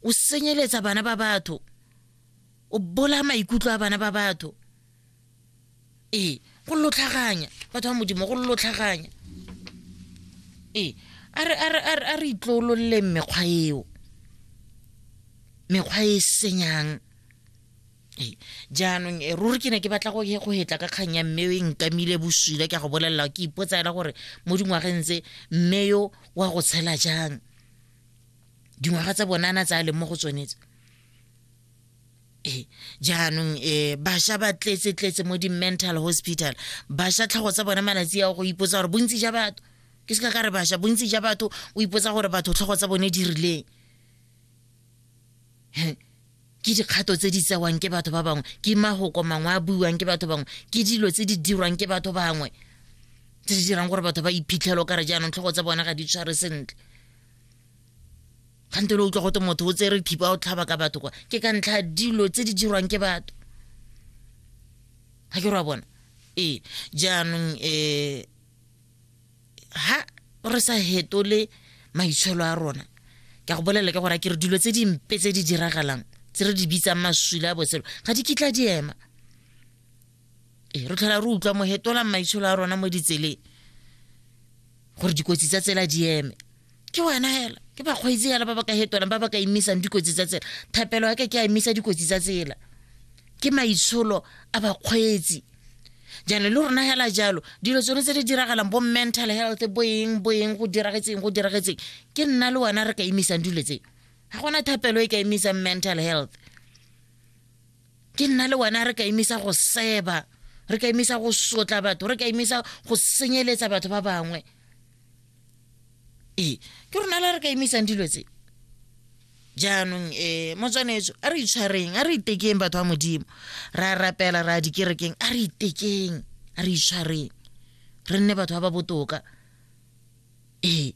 o senyeletsa bana ba batho o bola maikutlo a bana ba batho ee go lotlhaganya batho ba modimo go lotlhaganya ee a re itlolololeng mekgwa eo mekgwa e senyang jaanong eh, ruri ke ne ke batla go hetla ka kgang ya mme e nkamile boswile ke a go bolelela ke ipotsa ela gore mo dingwageng tse mme yo wa go tshela jang dingwaga tsa bone a na tsa a leng mo go tsone tse ee jaanong um bašwa ba tletse tletse mo di-mental hospital bašwa tlhogo tsa bone malatsi ao go ipotsa gore bontsi ja batho ke se ka ka re bašwa bontsi ja batho o ipotsa gore batho tlhogo tsa bone di rileng ke dikgato tse di tsewang ke batho ba bangwe ke magoko mangwe a buiwang ke batho bangwe ke dilo tse di dirwang ke batho bangwe tse di dirang gore batho ba iphitlhelo ka re jaanong tlhogo tsa bona ga di tshware sentle gante le utlwa gote motho o tsere thipa o tlhaba ka batho kwa ke ka ntlha dilo tse di dirwang ke batho ga ke rwa bona ee jaanong um ha re sa hetole maitsholo a rona ke go bolela ke gore ke re dilo tse dimpe tse di diragalang tse re di bitsang maswile a botshelo ga di kitla di ema ee re tlhola re utlwa mohetolang maitsholo a rona mo ditseleng gore dikotsi tsa tsela di eme ke wena hela ke bakgweetsi hela ba ba ka hetolang ba ba ka emisang dikotsi tsa tsela thapelo ya ka ke a emisa dikotsi tsa tsela ke maitsholo a bakgweetsi jaanong le rona hela jalo dilo tsone tse di diragalang bo mental health boeng boeng go diragetseng go diragetseng ke nna le wena re ka emisang dilo tse ga gona thapelo e ka emisang mental health ke nna le wena re ka emisa go seba re ka emisa go sotla batho re ka emisa go senyeletsa batho ba bangwe ee ke rona la re ka emisang dilo tse jaanong um motswanetso a re itshwareng a re itekeng batho ba modimo ra rapela ra dikerekeng a re itekeng a re itshwareng re nne batho ba ba botoka ee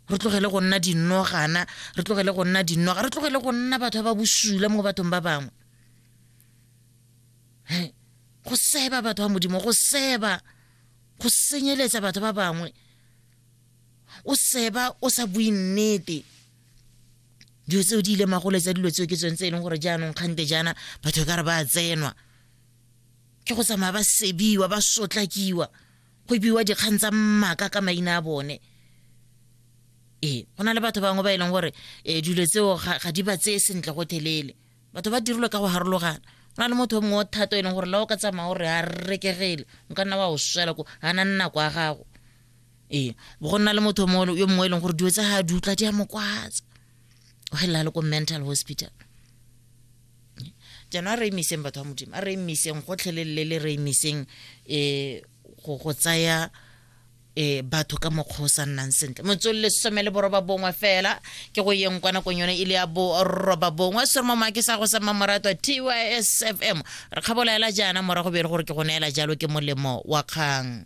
re tlogele go nna dinogana re tlogele go nna dinoga re tlogele go nna batho ba ba bosula mo bathong ba bangwe go seba batho ba modimo go seba go senyeletsa batho ba bangwe o seba o sa bue nnete dilo tseo di ile magolo tsa dilo tseo ke tsone tse e leng gore jaanong kgante jaana batho ka re ba tsenwa ke go tsamaya ba sebiwa ba sotlakiwa go biwa dikgang tsa mmaka ka maina a bone ee go na le batho bangwe ba e leng gore um dilo tseo ga di ba tseye sentle go thelele batho ba dirilwe ka go harologana go na le motho o mongwe o thata e leng gore la o ka tsamaya gore a rekegele o ka nna wa o swela ko ga na nako ya gago ee bo go nna le motho yo mongwe e leng gore dilo tsa ga di utla di a mokwatsa o gelela le ko mental hospital jaanong a re emiseng batho ba modimo a re emiseng gotlhelelele le re emiseng um go go tsaya um batho ka mokgwa o sa nnang sentle motswelele some le boroba bongwe fela ke go yeng kwa nakong yone e le ya boroba bongwe sere mo maake sa go sa mmamoratwa tys fm re kgabolaela jaana morago be e le gore ke go neela jalo ke molemo wa kgang